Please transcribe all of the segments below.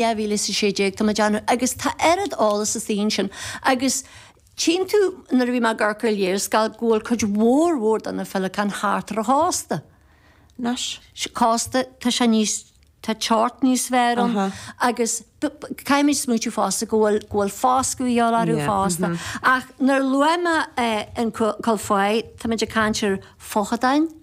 2016, tá mé deimhin, agus tá oiread eolas sa tsuíomh sin, agus tchíonn tú, nuair a bhí mé ag amharc ar léarscáil, go bhfuil cuid mhór mhór de na féileacáin thart ar an chósta. Anois. cósta, tá sé níos. tá teocht níos fearr ann agus caithfimid smaoitiú fosta go bhfuil go bhfuil foscadh a dhíobháil orthu fosta. Ach nuair a luaigh mé an cál faiche, táimid ag caint ar feochadáin,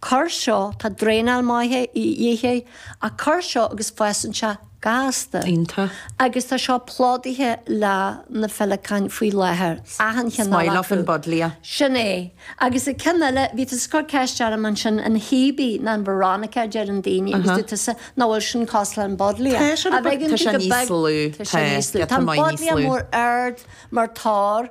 tor seo tá draenáil mhaith a dhíth ar an tor seo agus fásann sé gasta. Iontach. Agus tá seo plódaithe le na féileacáin faoi láthair. Achan cheann acu. Is maith leofa an buddleia. Sin é. Agus an ceann eile, bhí tusa cur ceist orm ansin, an Hebe ná an Veronica a deireann daoine agus dúirt tusa nach bhfuil sin cosúil leis an buddleia. Tá sé, tá sé níos lú, tá, tá, tá an buddleia mór ard mar tor.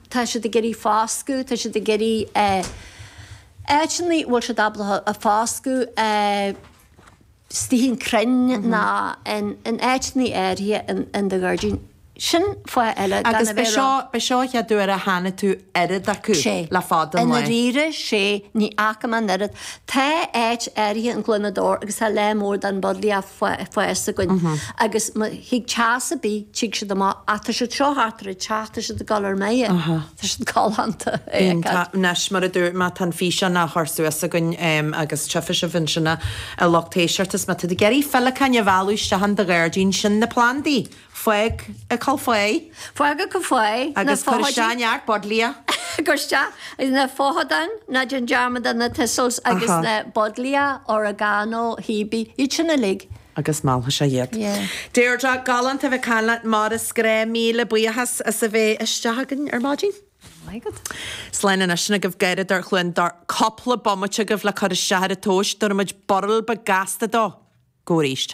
Tá siad ag iarraidh foscadh, tá siad ag iarraidh áiteanna a bhfuil siad ábalta foscadh, istigh in crainn ná in áiteanna áirithe in do ghairdín, sin fáth eile gan a bheith ag rá. Agus ab é seo an chéad uair a chonaic tú oiread acu le fada an lá. Sé, i ndáiríre, sé, ní fhaca mé an oiread. Tá áit áirithe in Cluain na dTor agus tá lear mór den buddleia ag fás againn agus má thig teas ar bith tig siad amach ach tá siad seo thart ar an teach tá siad ag gabháil ar mire. Tá siad galánta a fheiceáil. Anois mar a dúirt mé tá an físeán á chur suas againn agus tchífidh sibh ansin a lucht éisteachta is má tá tú ag iarraidh féileacáin a mhealladh isteach in do ghairdín, sin na plandaí! Fág an cál faiche. Fág an cál faiche, na feochadáin. Agus cuir isteach neart buddleia. cuir isteach na feochadáin, ná déan dearmad de na thistles agus na buddleia, oregano, hebe, iad sin uilig. agus meallfaidh sé iad. Deirdre, galánta a bheith caint leat mar is gnách, míle buíochas as a bheith isteach againn ar maidin. Very good. Slán anois sin agaibh garradóir Chluain na dTor cúpla bomaite agaibh le cur isteach ar an tomhas, tabharfaimid burl beag gasta dó. Go arís.